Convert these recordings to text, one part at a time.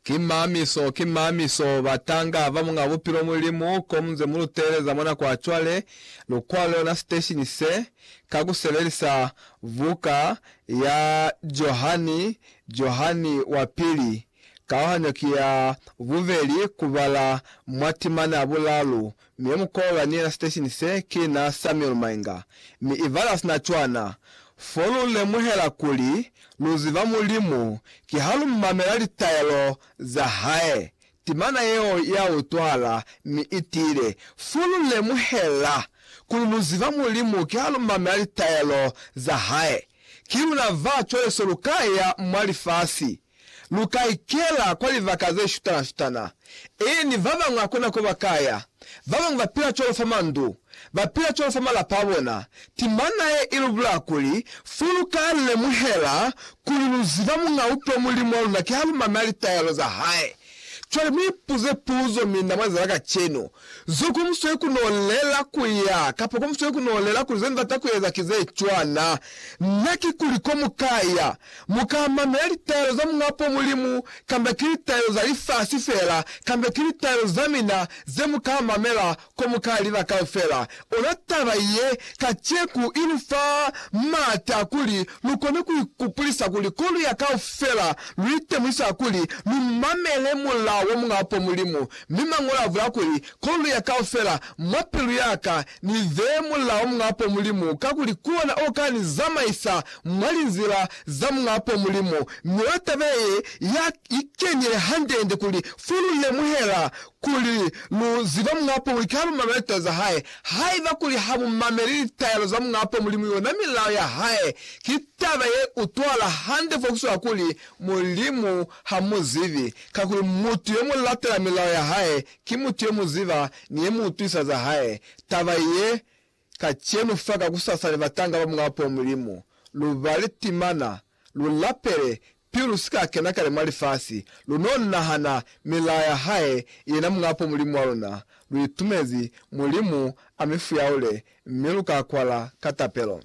Ki mamiso, ki mamiso, batanga ba Muñ'a Bupilo Mulimu, ko mu nze mu lu teeleza mwa nako ya cwale, lu kwa lona siteshini se, ka ku sebelisa buka ya Johani, Johani wa Pili, kauhanyo ki ya bubeli ku bala mwa timana ya bulalu, Mi yo mukolwa ni yena siteshini se ki na Samuel Mainga, mi i bala sina cwana, Fo lu lemuhela kuli lu ziba Mulimu ki ha lu mamela litaelo za hae. Timana yeo ya utwahala mi i tiile, Fo lu lemuhela kuli lu ziba Mulimu ki ha lu mamela litaelo za hae. Ki luna ba cwale so lu ka ya mwa lifasi. Lu ka ikela kwa libaka ze shutana-shutana, ee, ni ba bañwi hakuna ko ba ka ya. Ba bañwi ba pila cwalo fa mandu, ba pila cwalo fa malapa a bona. Timana ye i lu bulaya kuli, fo lu ka lemuhela kuli lu ziba Muñ'a Uto Mulimu wa luna kiha lu mamela litayelo za hae. Cwale mi ipuze puzo, mi na mwazala kacenu, Zo ku musweli ku no lela ku ya, kapa ku musweli ku no lela kuli ze Ni bata ku eza ki ze cwana? Na ki kuli ko mu ka ya, mu ka mamela litaelo za Muñapo Mulimu, kamba ki litaelo za lifasi fela, kamba ki litaelo za mina, ze mu ka mamela Ko mu ka lila kaufela, ona taba ye kaceku i lu fa maata a kuli lu kone ku ikupulisa kuli ko lu ya kaufela, lu itemuisa kuli lu mamele mulao wa Muñ'a Apo Mulimu. Mi Mañolo a bula kuli, Ko lu ya kaufela, mwa pilu ya ka, ni beye mulao wa Muñ'a Apo Mulimu, kakuli ki ona o ka ni zamaisa mwa linzila za Muñ'a Apo Mulimu. Mi ona taba ye ya ikenile hande-hande kuli fo lu lemuhela Kuli, Lu ziba Muñ'a Pomulimu ki ha lu mamela litaelo za Hae. Haiba kuli ha mu mameli litaelo za Muñ'a Pomulimu, yona milao ya Hae, ki taba ye utwahala hande fo ku swana kuli Mulimu ha mu zibi. Kakuli mutu yo mu latela milao ya Hae, ki mutu yo mu ziba ni ye mu utwisa za Hae. Taba ye Kacenu fa kakusasa ni batanga ba Mulao po Mulimu, lu bale timana, lu lapele, pilu lu si ka kena kale mwa lifasi, lu n'o nahana milao ya Hae, yena Mulao po Mulimu wa luna. Lu itumezi Mulimu a mi fuyaule, mi lu ka kwala ka tapelo.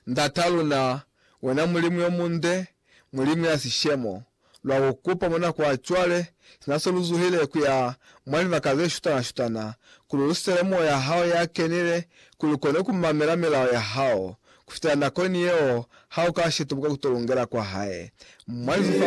Ndat'a luna, wena Mulimu yo munde, Mulimu ya sishemo, lwa ku kupa mwa nako ya cwale, sina se lu zuhile ku ya mwa libaka ze shutana-shutana, kuli lu sitele Moya ya Hao ya Kenile, kuli lu kone ku mamela milao ya Hao. Ku fitela nakoni yeo, ha u ka shitubuka ku to lungela kwa Hae. Mwa lizufa